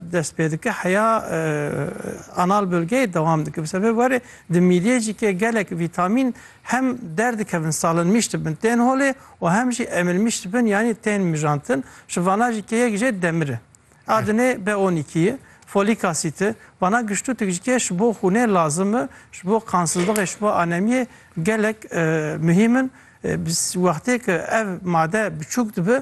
dest pê dike heya anal bölgeyê dewam dike bi sebê werê di mîliyê jî ke gelek vîtamîn hem derdikevin salinmîş dibin tên holê û hem jî emilmîş dibin yanî tên mijantin ji vana jî ke yek jê demir e a dinê b on îkî ye folîk asît e vana giştûtik jî ke ji bo xûnê lazim e ji bo qansizlixê ji bo anemiyê gelek muhîm in wextê ke ev made biçûk dibe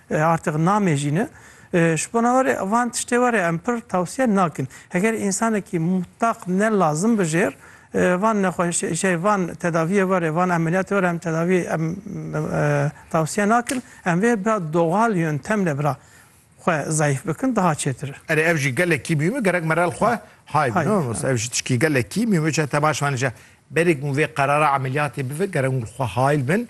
Artêk namejîne. Ji bona we rê van tiştê we rê em pir tewsiye nakin. Heger însanekî mutaq ne lazim bi jêr van nexweşê jê van tedaviyê we rê van emeliyatê we rê em tedavî em tewsiye nakin. Em vê bira doxal yöntemle bira xwe zayif bikin daha çêtir e. Erê ev jî gelekî mîm e gerek merel xwe hay bî no ev jî tişkî gelekî mîm e. Çi te baş anî je berêk min vê qerara emeliyatê bive gerek hûn xwe hayl bin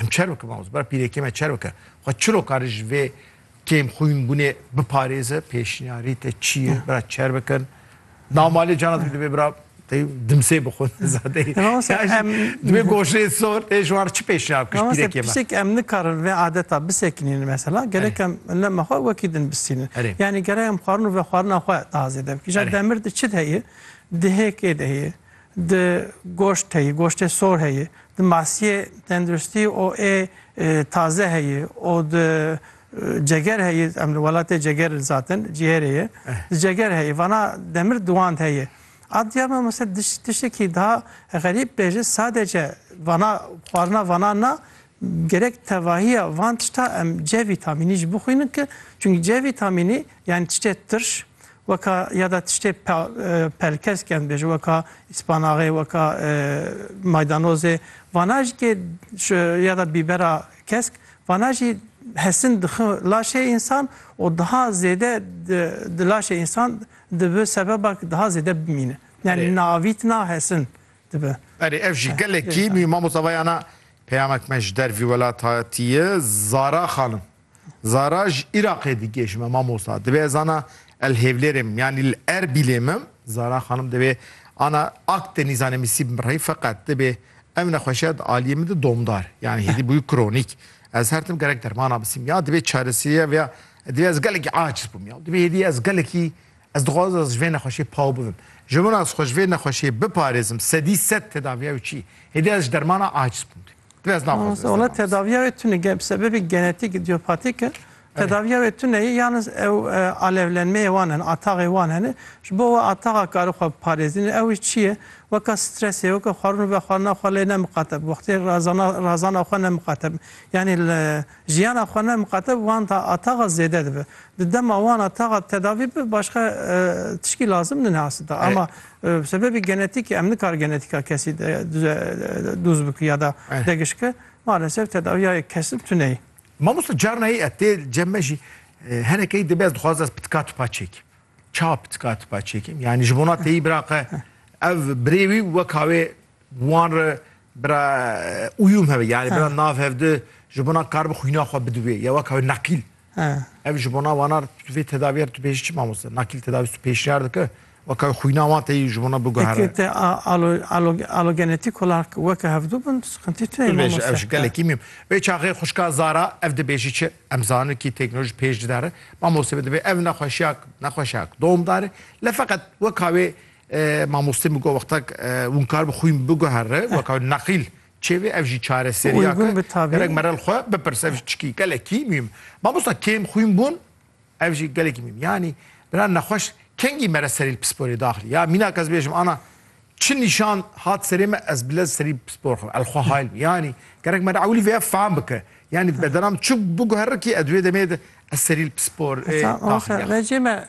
Em çerwike mamoste bira pîrekê me çerwike xwe çiro kare ji vê kêm xwîn bûnê biparêze pêşniyarî te çi ye bira çer bikin nav malê cana dibî divê bira dimsê bixwe zadeyî divê goşê sor tê ji wan çi pêşniyar bikin ji pîrekê me tiştek em nikarin vê adeta bisekinîn mesela gelek em lema xwe wekî din bistînin yanî gerek em xwarin û vexwarina xwe tazêde bikîn ja demir de çi de heye dihêkê de heye Di goşt heye, goştê sor heye, di masiyê tenduristî û ê taze heye û di ceger heye, em li welatê ceger in zaten, cîhêrê ye, di ceger heye, vana demir diwand heye. A diya me mesela tiştekî daha xerîb bê jî sadece vana xwarina vana na Gerek tevahiya van tişta em C vîtamînî jî bixwînin ki çunkî C vîtamînî yanî tiştê tirş weka ya da tiştê pelkes ke em dibêjin weka îspanaxê weka maydanozê vana jî kê ya da bîbera kesk vana jî hesin dixin laşê însan û daha zêde di laşê însan dibi sebeba ki daha zêde bimîne. Yani naavîtina hesin dibe. Berê ev jî gelekî mî mamosta vayana peyamek me ji dervî welat hatiye Zara xanim. Zara ji Îraqê digê ji me mamosta. Divê ez ana el Hêvlêrê mim yanî li Erbîlê mim Zara xanim divê ana ak tenî zanê misî bim rey feqet divê ev nexweşiya di aliyê min di domdar yanî hêdî bûyî kronîk. Ez her tim gerek dermana bisîm ya divê çaresîriya vê ya divê ez gelekî aciz bûm ya divê hêdî ez gelekî Ez dixwazim ez ji vê nexweşiyê paw bibim. Ji min re ez xwe ji vê nexweşiyê biparêzim sedî sed tedaviya wê çi ye. Hêdî ez ji dermana aids bûm dê. Divê ez naxwazim ez derman bidim. Wela tedaviya wê tune ye. Bi sebebê genetîk, îdîopatîk e. Tedaviya wê tune ye. Yalnez ew alevlenmeyê wan hene, ataxê wan hene. Ji bo we ataxa karî xwe biparêzîne. Ew jî çi ye? Weka stresê, weka xwarin û vexwarina xwe lê nemiqate bi wextê razana xwe nemiqate bi. Yanî li. Jiyana xwe ne miqate bi wan ta a taxa zêde dibe. Di dema wan a taxa tedavî bibe başka tişkî lazim nine asita. Ama bi sebebê genetîkê em nikar genetîka kesî dûz biki ya da degişki malesev tedaviya yek kesin tune yî. Mamosta carna yê tê cem me jî henekeyî dibe ez dixwaz ez pitika tipa çêkim. Ça pitika tipa çêkim? Yani ji bona teyî bira qe ev birêwî weka wê wan re Bira uyum hebe yani bira nav hevdi ji bona kar bi xwîna xwe bidivê ya wek hebe nakîl. Ev ji bona wanar tu vê tedaviyê tu pêş çi mamoste nakîl tedavî tu pêşniyar dike weka xwîna wan teyî ji bona biguhere. Te alogenetik kolar weke hevdu bin sıkıntı tune mamoste. Ev ji gelekî mîm. Vê çaxê xuşka Zara ev dibêjî çi em zanin kî teknoloji pêş didare mamoste bi divê ev nexweşiyak nexweşiyak doğumdare le feqet weka wê Mamostê min got wextek winkar bi xwîn biguhere weka wî neqîl çêvê ev jî çareseriya ke gerek merel xwe bipirse ev jî çikî gelekî mîm. Mamosta kêm xwîn bûn ev jî gelekî mîm yanî bira nexweş kengî mere serî li pisporê daxilî ya mînak ez bêjim ana çi nîşan hat serê me ez bile serî bi pispor xwe el xwe hayl bî yanî gerek me ewilî vêya fam bike yanî bedena min çi biguhere kî ez wê demê de ez serî li pispor daxilî ya.